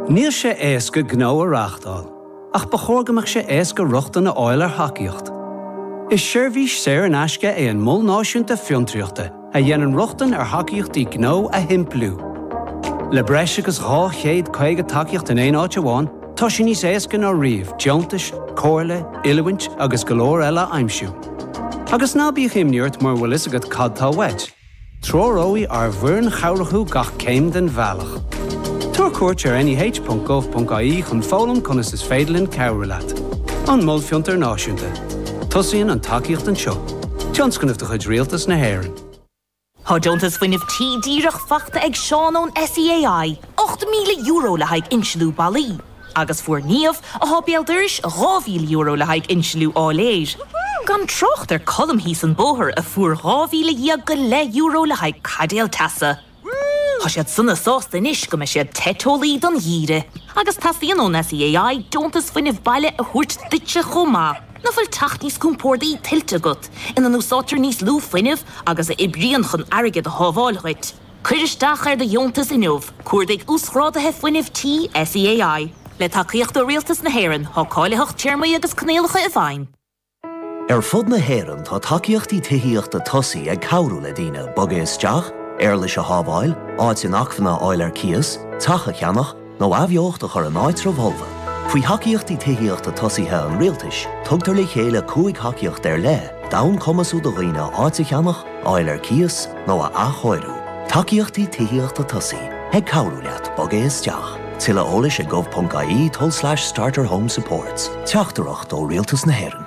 Níl sé éasca gnó a reáchtáil, ach ba chóir go mbeadh sé éasca rochtain a fháil ar thacaíocht. Is seirbhís saor in aisce é an Mol Náisiúnta Fiontraíochta a dhéanann rochtain ar thacaíochtaí gnó a shimpliú. Le breis agus 250 tacaíocht in aon áit amháin, tá sé níos éasca ná riamh deontais, comhairle, oiliúint agus go leor eile a aimsiú. Agus ná bíodh imní ort mura bhfuil fhios agat cad tá uait! Treoróidh ár bhfoireann chabhrach thú gach céim den bhealach. Tabhair cuairt ar neh.gov.ie chun foghlaim conas is féidir linn cabhrú leat. An Mol Fiontair Náisiúnta. Tosaíonn an tacaíocht anseo. Tionscnamh de chuid Rialtas na hÉireann. Tá Deontas Fuinnimh Tí díreach fachta ag Seán ón SEAI, €8,000 le haghaidh insliú ballaí. Agus fuair Niamh, athá béal dorais, dhá mhíle euro le haghaidh insliú áiléir. Gan trácht ar Colm thíos an bóthar, a fuair dhá mhíle dhéag go leith euro le haghaidh caidéal teasa. Tá siad sona sásta anois go mbeidh siad te teolaí don gheimhreadh. Agus teastaíonn ón SEAI deontas fuinnimh baile a thabhairt duitse chomh maith, nach bhfuil teach níos compórdaí tuillte agat, ina n-úsáidtear níos lú fuinnimh agus a oibríonn chun airgead a shábháil dhuit. Cuir isteach ar do dheontas inniu, Cuardaigh Uasghrádaithe Fuinnimh Tí, SEAI. Le tacaíocht ó Rialtas na hÉireann, tá cáilitheacht téarmaí agus coinníollacha i bhfeidhm. Ar fud na hÉireann tá Tacaíochtaí Tithíochta Tosaigh ag cabhrú le daoine bogadh isteach, éarlais a shábháil, áit inacmhainne a fháil ar cíos, teach a cheannach, nó athbheocht a chur in áitribh fholmha. Faoi thacaíochtaí tithíochta tosaigh an rialtais, tugtar le chéile cúig thacaíocht ar leith d'fhonn cumasú do dhaoine áit a cheannach, a fháil ar cíos, nó a athchóiriú. Tacaíochtaí tithíochta tosaigh, ag cabhrú leat bogadh isteach. Tuilleadh eolais ag gov.ie tulslais starter home supports. Teachtaireacht ó Rialtas na hÉireann.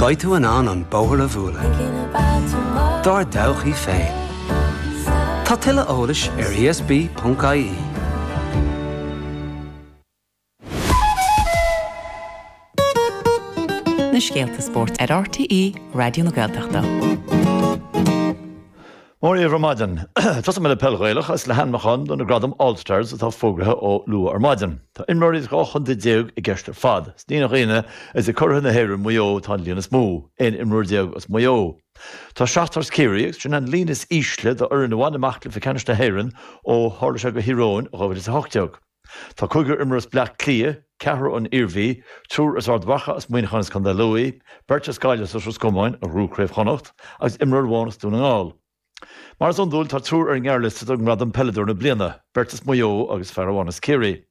Beidh tú in ann an bóthar a bhualadh dár dtodhchaí féin. Tá tuilleadh eolais ar ESB.ie. na scéalta spóirt ar RTÉ Raidió na Gaeltachta. Mora dhaoibh ar maidin. Tosóidh mé le peil Ghaelach agus le hainmniúcháin do na gradaim All-Stars atá fógraithe ó luath ar maidin. Tá imreoirí as dhá chontae déag i gceist ar fad, is ní nach ionadh is ag curaidh na hÉireann Maigh Eo atá an líon is mó, 11 imreoir as Maigh Eo. Tá seachtar as Ciarraí agus sin an líon is ísle d'fhoireann a bhain amach cluiche ceannais na hÉireann ó tharla sé do Thír Eoghain i 2018. Tá cúigear imreoir as Bleá Cliath, ceathrar ón Iarmhí, triúr as Ard Mhacha, as Muineachán agus as Contae Lú, beirt as Gaillimh is as Ros Comáin a ghnóthaigh Craobh Chonnacht agus imreoir amháin as Dún na nGall. Mar is iondúil, tá triúr ar an ngearrliosta don ngradam 'Peileadóir na Bliana', beirt as Maigh Eo agus fear amháin as Ciarraí.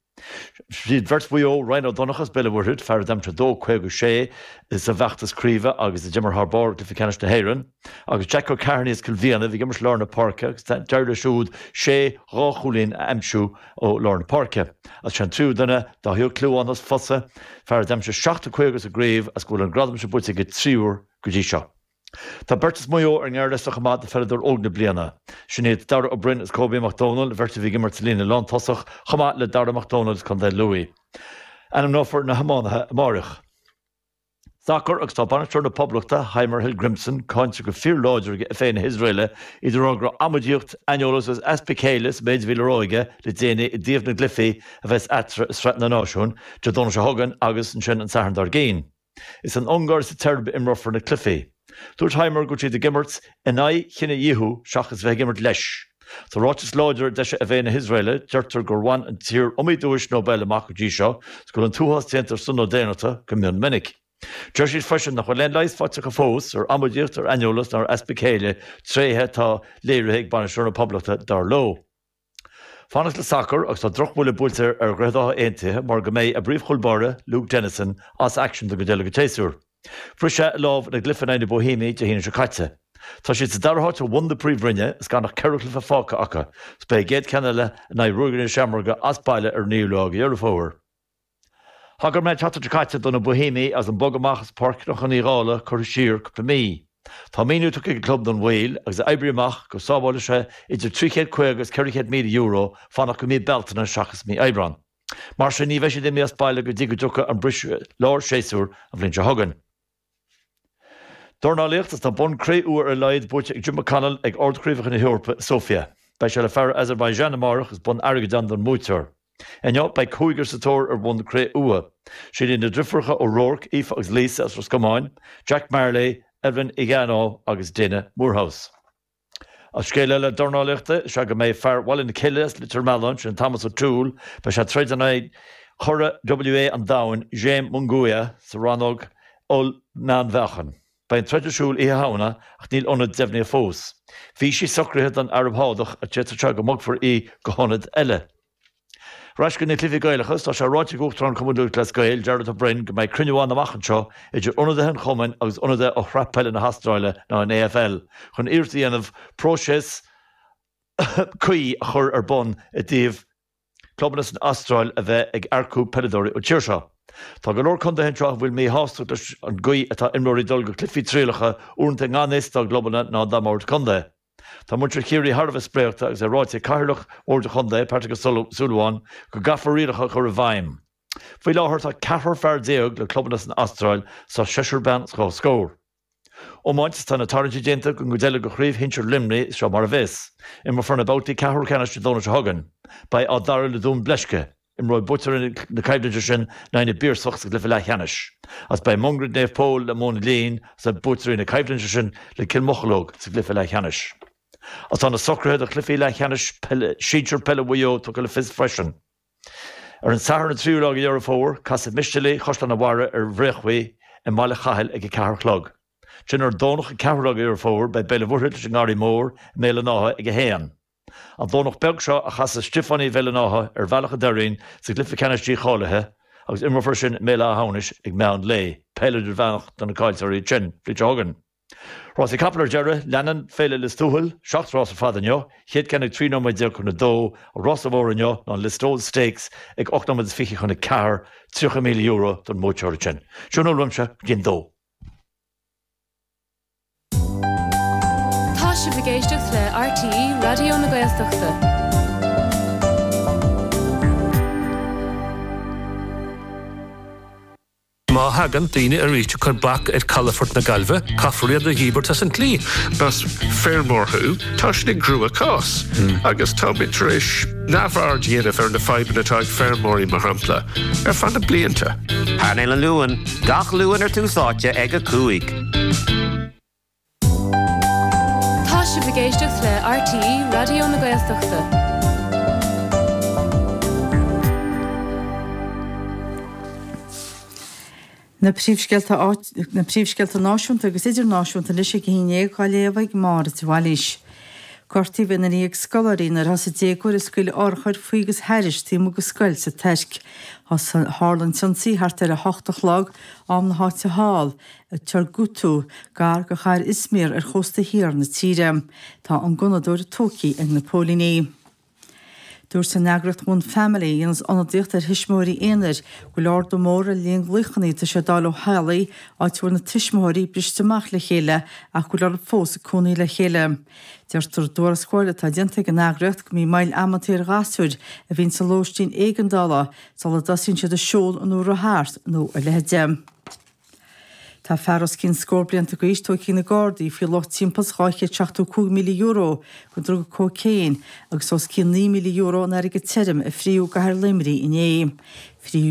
Is iad beirt Mhaigh Eo, Ryan Ó Donnchadha as Béal an Mhuirthead, fear a d'aimsigh 2-56 sa bhfeachtas craoibhe agus a d'imir thar barr i gcluiche ceannais na hÉireann, Agus Jack Ó Cearnaigh as Cill Mhíona a bhí ag imirt lár na páirce agus d'éirigh leis siúd sé dhá chúilín a aimsiú ó lár na páirce. Agus sé an tríú duine, Dáithí Ó Clúmháin as Fosa, fear a d'aimsigh 7 50 sa gcraobh agus go bhfuil an gradam sin buaite aige trí huaire go dtí seo. Tá beirt as Maigh Eo ar an ngearrliosta chomh maith do Pheileadóir Óg na Bliana. Sin iad Dara Ó Beirn agus Kobe Mac Domhnaill, bheirt a bhí ag imirt sa líne lántosach chomh maith le Dara Mac Domhnaill as Co. Lú. Ainmneofar na hiománaithe amáireach. sacar agus tá bainisteoir na Poblachta, Heimir Hallgrimsson, cáinte go fíorláidir ag FA na hIosraeile, a deir go raibh amaidíocht, aineolas agus easpa céille sa méid a bhí le rá aige le déanaí i dtaobh na gcluichí a bheas eatarthu i Sraith na Náisiún, Dé Domhnaigh seo chugainn agus ansin an Satharn dár gcionn. Is san Ungáir is sa tSeirb a imreofar na cluichí. Dúirt Heimir go raibh siad ag imirt in aghaidh chinedhíothú seachas a bheith ag imirt leis. Sa ráiteas láidir a d'eisigh FA na hIosraeile, deirtear gur bhain an tír iomaí duais Nobel amach go dtí seo, is go bhfuil an t-uathás déanta ar son na daonnachta go mion minic. Deir siad freisin nach bhfuil aon leigheas faighte acu fós ar amaidíocht, ar aineolas ná ar easpa céille, tréithe atá léirithe ag bainisteoir na Poblachta, dar leo. fanacht le sacar agus tá drochbhuille buailte ar Dhroichead Átha Aontaithe mar go mbeidh a bpríomhchúl báire, Luke Dennison, as aicsean do go deireadh an tséasúir. Bhris sé a lámh ina gcluiche in aghaidh na Boihéamaigh Dé hAoine seo caite. Tá siad sa dara háit ó bhun na Príomhroinne is gan ach ceithre chluiche fágtha acu, is beidh a gcéad cheann eile in aghaidh Ruagairí na Seamróige as baile ar an 9ú lá de Dheireadh Fómhair. Thagair mé an tseachtain seo caite do na Boihéamaigh agus an bogadh amach as Páirc Chnocán Uí Dhálaigh curtha siar cúpla mí. Tá míniú tugtha ag an gclub don mhoill agus é oibrithe amach go sábhálfadh sé idir 350 agus 400 míle euro fanacht go mí Bealtaine seachas mí Aibreán. Mar sin, ní bheidh siad ag imeacht as baile go dtí go dtiocfaidh an briseadh lár séasúr an bhliain seo chugainn. Dornálaíocht is tá bonn cré-umha ar a laghad buaite ag Jon McConnell ag Ard-Chraobhacha na hEorpa i Sofia. Beidh sé le fear as Azerbaijan amárach is bonn airgid ann don mbuaiteoir. Inniu, beidh cúigear sa tóir ar bhonn cré-umha. Sin iad na deirfiúracha O'Rourke, Aoife agus Lisa as Ros Comáin, Jack Marley, Evelyn Igharo agus Daina Moorehouse. An scéal eile dornálaíochta, is ea go mbeidh fear Bhaile na Cille as Leitir Mealláin, sin Thomas O'Toole, beidh sé ag troid in aghaidh churadh WBA an Domhain, Jaime Munguia, sa rannóg Oll-Mheánmheáchan. Beidh an troid ar siúl Oíche Shamhna ach níl ionad deimhnithe fós. Bhí sí socraithe don Araib Shádach ach d'fhéadfadh sé go mbogfar í go hionad eile. Ar ais chuig na cluichí Gaelacha is tá sé ráite ag Uachtarán Cumann Lúthchleas Gael, Jarlath Ó Broin, go mbeidh cruinniú ann amach anseo idir ionadaithe an chumainn agus ionadaithe ó Shraith Peile na hAstráile nó an AFL chun iarracht a dhéanamh próiseas cuí a chur ar bun i dtaobh clubanna san Astráil a bheith ag earcú peileadóirí ón tír seo. Tá go leor contaetha anseo a bhfuil míshástacht leis an gcaoi atá imreoirí ag dul go cluichí trialacha uaireanta i ngan fhios dá gclubanna ná dá mbord contae. Tá muintir Chiarraí thar a bheith spréachta agus é ráite ag Cathaoirleach Bhord an Chontae, Patrick Ó Súilleabháin, go gcaithfear rialacha a chur i bhfeidhm. Faoi láthair tá ceathrar fear déag le clubanna san Astráil is seisear bean is scór. Iomáint Tá na tarraingtí déanta don gcuid eile de chraobh shinsir Luimnigh, seo mar a bheas. Imreofar na babhtaí ceathrú ceannais an Domhnach seo chugainn. Beidh Áth Dara le Dún Bleisce. Imreoidh buaiteoirí na coimhlinte sin in aghaidh na bPiarsach sa gcluiche leathcheannais, agus beidh Mungairit Naomh Pól le Móin a' Lín agus beidh buaiteoirí na coimhlinte sin le Cill Mocheallóg sa gcluiche leathcheannais. Agus tá na socruithe do chluichí leathcheannais sinsir peile Mhaigh Eo tugtha le fios freisin. Ar an Satharn an 3ú lá de Dheireadh Fómhair, casfaidh Mistéalaigh Chaisleán a' Bharraigh ar Bhréachmhaigh i mBaile Chathail ag a ceathair a chlog. Ansin ar an Domhnach an 4ú lá de Dheireadh Fómhair beidh Béal an Mhuirthead leis an nGarraí Mór i mBéal an Átha ag a haon. An Domhnach beag seo a chasas Stiofánaigh Bhéal an Átha ar Bhealach a' Doirín sa gcluiche ceannais dícháilithe agus imreofar sin i mBéal Átha hAmhnais ag meán lae, peil idirmheánach do na caillteoirí ansin an bhliain seo chugainn. Rásaí capall ar deireadh, leanann Féile Lios Tuathail, seacht rás ar fad inniu, chéad ceann ag 13 nóiméad chun a dó, an rás is mó inniu ná an Listowel Stakes ag ocht nóiméad is fiche chun a ceathair, €30,000 don mbuaiteoir ansin. Sin a bhfuil uaimse go dtí an dó. Tá sibh ag éisteacht le RTÉ Raidió na Gaeltachta. Má thagann daoine arís ag cur bac ar calafort na Gaillmhe, caithfear iad a dhíbirt as an tslí. Más feirmeoir thú, tá sin i gcruachás, agus táimid tar éis neamhaird a dhéanamh ar na fadhbanna atá ag feirmeoirí, mar shampla, ar feadh na blianta. Painéal an Luain, gach Luan ar Tús Áite ag a cúig. Tá sibh ag éisteacht le RTÉ Raidió na Gaeltachta. Na príomhscéalta náisiúnta agus idirnáisiúnta anois ag a haon déag á léamh ag Máire de Bhailís. Gortaíodh aon duine dhéag scoláirí nuair thosaigh déagóir ag scaoileadh urchar faoi agus thairis taobh amuigh de scoil sa Tuirc. Tharla an t-ionsaí thart ar a hocht a chlog, am na háite thall. ag Turgutlu, gar do chathair Izmir ar chósta thiar na tíre. Tá an gunnadóir tógtha ag na póilíní. Dúirt an eagraíocht One Family, a dhéanas ionadaíocht ar thuismitheoirí aonair, go bhfuil ardú mór ar an líon glaochanna atá sé d'fháil ó theaghlaigh áit a bhfuil na tuismitheoirí briste amach le chéile ach go bhfuil orthu fós ag cónaí le chéile. Deirtear i dtuarascáil atá déanta ag an eagraíocht go mbíonn moill amanntaí ar ghasúir a bhíonn sa lóistín éigeandála sula dtosaíonn siad ag siúl nó ag rith thart nó a leithide. Tá fear os cionn scór blianta d'aois tógtha ag na Gardaí faoi luach timpeall is €275,000 den druga cócaon agus os cionn €9,000 in airgead tirim a frítheadh i gcathair Luimnigh inné. Frítheadh